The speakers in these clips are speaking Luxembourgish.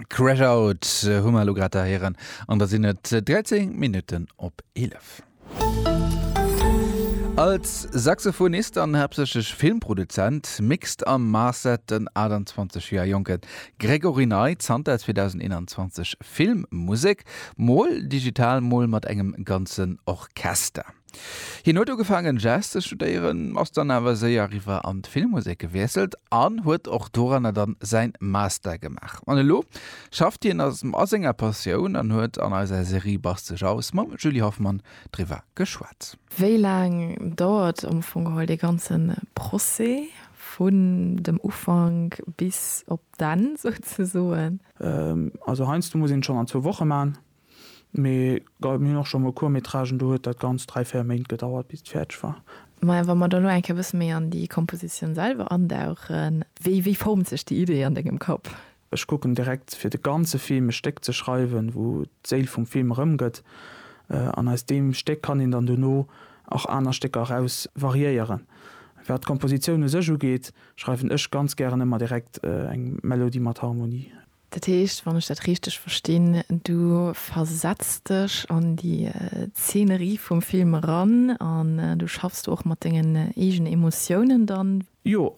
Crash Out hu mer lo grad erhéieren an da sinn et 13 Minutten op 11. Als Saxophonist an haaptsächlech Filmproduzent mixt a mastert den 28 Joer jonke Gregory Ney zanter 2021 Filmmusek, mol digital, mol mat engem ganzen Orchester. Hien huet ugefaangen Jazz ze studéieren, ass dann awer séier riwwer an d'Filmmusek gewiesselt an huet och doranner dann säin Master gemaach. An elo schafft hien a senger Passioun an huet an eiser Serie Bast sech aus mam Julie Hoffmann driwwer geschwat. Wéi laang dauert am Fong geholl dee ganze Procès vun dem Ufank bis op d'Enn souzesoen? Also heiansdo muss een et schonn an zwou Woche maachen. Mee mir hunn och scho mol Court-métragen, do huet dat Ganzt dräi, véier Méint gedauert, bis et fäerdeg war. Mä wa mer dann elo eng Kéier e bësse méi an déi Kompositioun selwer andauchen, wéi, wéi formt sech déi Idee an dengem Kapp? Ech kucken direkt, fir de ganze Film e Stéck ze schreiwen, wou d'Séil vum Film erëmgëtt. An aus deem Stéck kann een dann dono och aner Stécker eraus variéieren. Wat d'Kompositioun u sech ugeet, schreiwen ech ganz gären ëmmer direkt eng Melodie mat Harmonie. Dat heescht, wann ech dat richteg verstinn, du versetz dech an déi Zeenerie vum Film eran an du schaffs do och mat dengen eegene Emotiounen dann? Jo,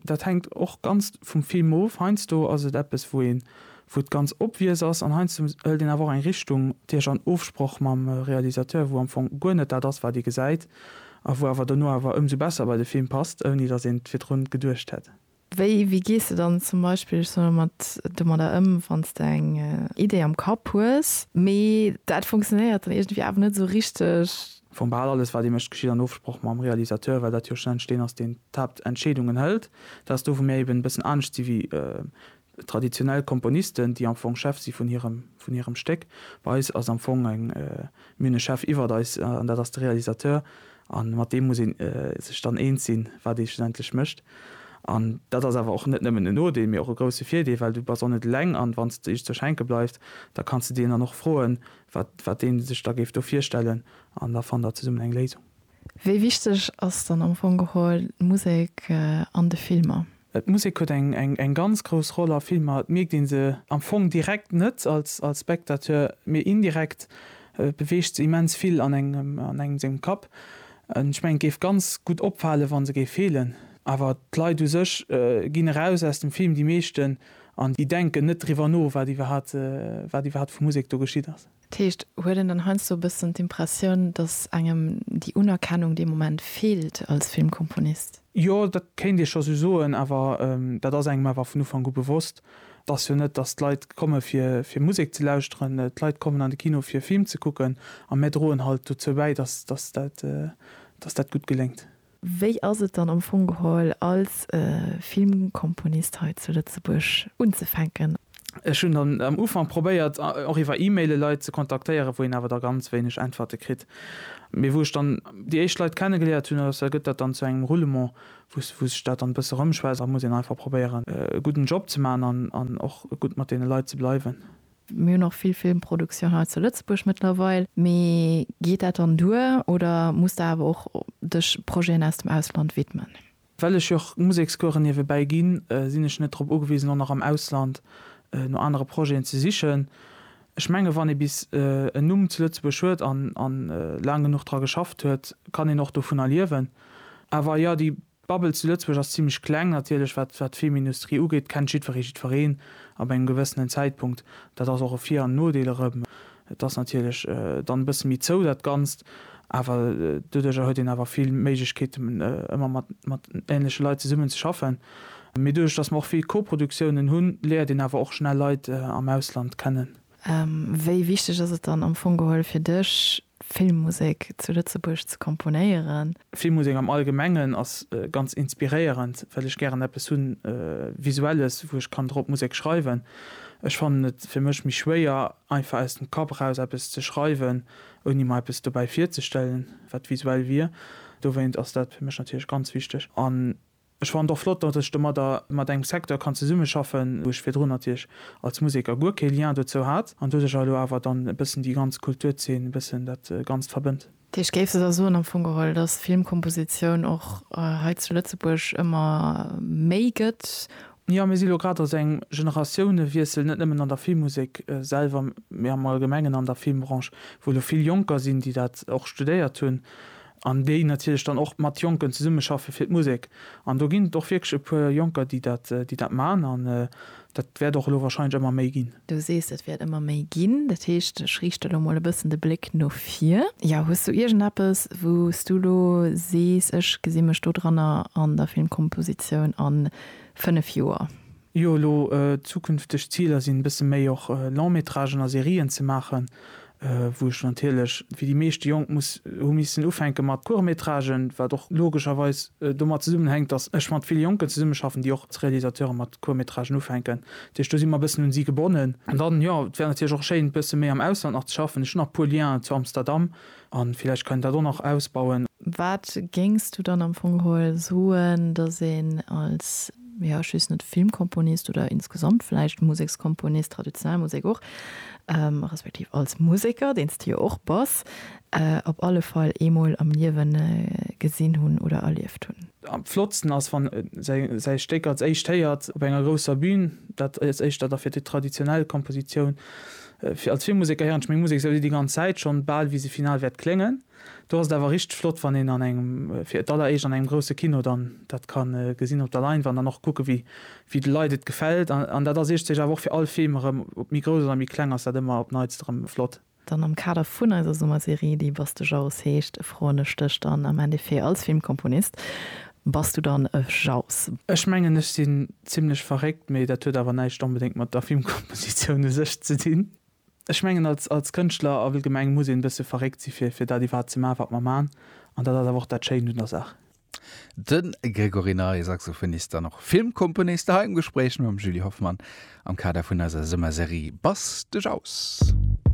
dat hänkt och ganz vum Film of. Heiansdo ass et eppes, wou een, wou et ganz obvious ass an heiansdo hëlt een awer och eng Richtung, Dirch an Ofsproch mam Realisateur, wou am Fong guer net dat ass, wat ee gesäit a wou awer dono awer ëmsou besser bei de Film passt, ouni datt een et virdrun geduecht hätt. Wéi, wéi gees de dann zum Beispill, ech soen elo mat, domadder ëm, wann s de eng Idee am Kapp hues, mee dat funktionéiert dann iergendwéi awer net esou richteg? Vu bal alles, wat ee mécht, geschitt an Ofsproch mam Realisateur, well dat jo schlussendlech deen ass, deen d'Haaptentscheedungen hëlt. Dat ass do, wou mir eben e bëssen anescht si wéi traditionell Komponisten, déi am Fong Chef si vun hirem, vun hirem Stéck. Bei eis ass am Fong eng, mir hunn e Chef iwwert eis an dat ass de Realisateur. A mat deem muss ee sech dann eens sinn, wat ee schlussendlech mécht. An dat ass awer och net nëmmen en Nodeel, mee och e grousse Virdeel, well du bass och net eleng. An wann s de iech ze schenke bleift, da kanns de deen dann och froen, wat dee sech da géif do virstellen. An da fannt der zesummen eng Léisung. Wéi wichteg ass dann am Fong geholl d'Musek an de Filmer? D'Musek huet eng ganz grouss Roll a Filmer. Et mierkt ee se am Fong direkt net als Spectateur, mee indirekt beweegt se immens vill an engem sengem Kapp. Ech mengen, et géif ganz gutt opfalen, wa se géif feelen. Awer d'Leit u sech ginn eraus aus dem Film, déi meeschten, an déi denken net driwwer no, wat iwwerhaapt vu Musek do geschitt ass. Dat heescht, huet een dann heiansdo e bëssen d'Impressioun, datt engem déi Unerkennung dee Moment feelt als Filmkomponist? Jo, dat kéint ee scho sou soen, awer dat ass engem awer vun Ufank u bewosst. Et ass jo net, datt d'Leit komme fir Musek ze lauschteren. D'Leit kommen an de Kino fir e Film ze kucken a mär droen halt dozou bäi, datt dat gutt geléngt. Wéi ass et dann am Fong geholl als Filmkomponist hei zu Lëtzebuerg unzefänken? Ech hunn dann am Ufank probéiert och iwwer E-Maile Leit ze kontaktéieren, wou een awer da ganz wéineg Äntwerte kritt. Mee wou ech dann déi éischt Leit kenne geléiert hunn, ass, gëtt dat dann zu engem Roulement, wou sech dat dann e bësse rëmschwätzt. Da muss een einfach probéieren e gudden Job ze maachen an och gutt mat deene Leit ze bleiwen. Mir hunn och vill Filmproduktioun hei zu Lëtzebuerg mëttlerweil. Mee geet dat dann duer oder muss de awer och dech Projeten aus dem Ausland widmen? Well ech jo och Musekscouren niewebäi ginn, sinn ech net drop ugewisen, och nach am Ausland no anere Projeten ze sichen. Ech menge wann ee bis en Numm zu Lëtzebuerg huet an laang genuch dra geschafft huet, kann een och dovunner liewen. Awer jo, déi D'Bubble zu Lëtzebuerg ass zimlech kleng, natierlech, wat wat d'Filmindustrie ugeet, kennt jiddweree jiddwereen ab engem gewëssenen Zäitpunkt. Dat ass och e Vir an Nodeel erëm. Et ass natierlech dann e bësse méi zou, dat Ganzt, awer doduerjer huet een awer vill Méiglechkeeten, ëmmer mat mat änleche Leit zesummen ze schaffen. Mee doduerch, dass mer och vill Koproduktiounen hunn, léiert een awer och schnell Leit am Ausland kennen. Wéi wichteg ass et dann am Fong geholl fir dech, Filmmusek zu Lëtzebuerg ze komponéieren? Filmmusek am Allgemengen ass ganz inspiréierend, well ech gären eppes hu Visuelles, wou ech kann drop Musek schreiwen. Ech fannen et fir mech méi schwéier, einfach aus dem Kapp eraus eppes ze schreiwen, ouni mer eppes dobäi virzestellen, wat visuell wier. Dowéint ass dat fir mech natierlech ganz wichteg. Ech fannen et och flott, datt ech domadder mat engem Secteur kann zesummeschaffen, wou ech virdrun natierlech als Museker guer kee Lien dozou hat, an doduercher elo awer dann e bëssen déi ganz Kulturzeen e bëssen dat Ganzt verbënnt. T. Ech géif esou soen am Fong geholl, datt d'Filmkompositioun och hei zu Lëtzebuerg ëmmer méi gëtt. Jo, mir si elo grad a sou engem Generatiounewiessel, net nëmmen an der Filmmusek selwer, mee am Allgemengen an der Filmbranche, wou elo vill Jonker sinn, déi dat och studéiert hunn An déi natierlech dann och mat Jonken zesummeschaffe fir d'Musek. An do ginn et och wierklech e puer Jonker, déi dat, déi dat man. An dat wäert och elo wahrscheinlech ëmmer méi ginn. Du sees, et wäert ëmmer méi ginn. Dat heescht, ech riichte lo mol e bëssen de Bléck no vir. Jo, hues du iergendeppes, wou s du lo sees, ech gesi mech dodranner an der Filmkompositioun a fënnef Joer? Jo, elo zukünfteg Ziler sinn e bësse méi och Long-métragen a Serien ze maachen, wou ech natierlech wéi déi meeschte Jonk muss hu missen ufänke mat Court-métragen, wat och logescherweis domat zesummenhänkt, datt ech mat vill Jonken zesummeschaffen, déi och als Realisateuren mat Court-métragen ufänken. Dat heescht do si mer e bëssen un si gebonnen. An dann, jo, et wär natierlech och schéin e bësse méi am Ausland nach ze schaffen. Ech hunn nach e puer Lienen zu Amsterdam, A villäicht kann een dat och nach ausbauen. Wat géings du dann am Fong geholl soen, datt een als, jo, just net Filmkomponist oder insgesamt vläicht Musekskomponist, traditionell Musek och, respektiv als Museker, deen s de jo och bass, op alle Fall eemol am Liewe gesinn hunn oder erlieft hunn? Am flottsten ass, wann e säi Stéck als éischt héiert op enger grousser Bün. Dat ass éischter da fir déi traditionell Kompositioun. Als vill Museker héieren ech meng Musek esou déi ganz Zäit schonn, bal wéi se final wäert kléngen. Do ass et awer richteg flott, wann een an engem, fir d'alleréischt an engem grousse Kino dann dat ka gesinn op der Leinwand an och kucken, wéi de Leit et gefält. An dat ass iergdstech awer och fir all Film erëm, ob méi grouss oder méi kleng, ass dat ëmmer op d'Neitst erëm flott. Dann am Kader vun eiser Summerserie, déi Bass de Jaus heescht, froen ech dech dann am Endeffet als Filmkomponist, Bass du dann e Jauss? Ech mengen ech sinn zimlech verréckt, mee dat huet awer näischt onbedéngt mat der Filmkompositioun u sech ze dinn. Ech mengen als als Kënschtler allgemeng muss een e bësse verréckt si fir fir dat iwwerhaapt ze maachen wat mer maachen an dat ass awer och dat Schéint un der Saach. De Grégory Ney, Saxophonist an och Filmkomponist, hei am Gespréich mam Julie Hoffmann am Kader vun eiser Summerserie Bass de Jauss.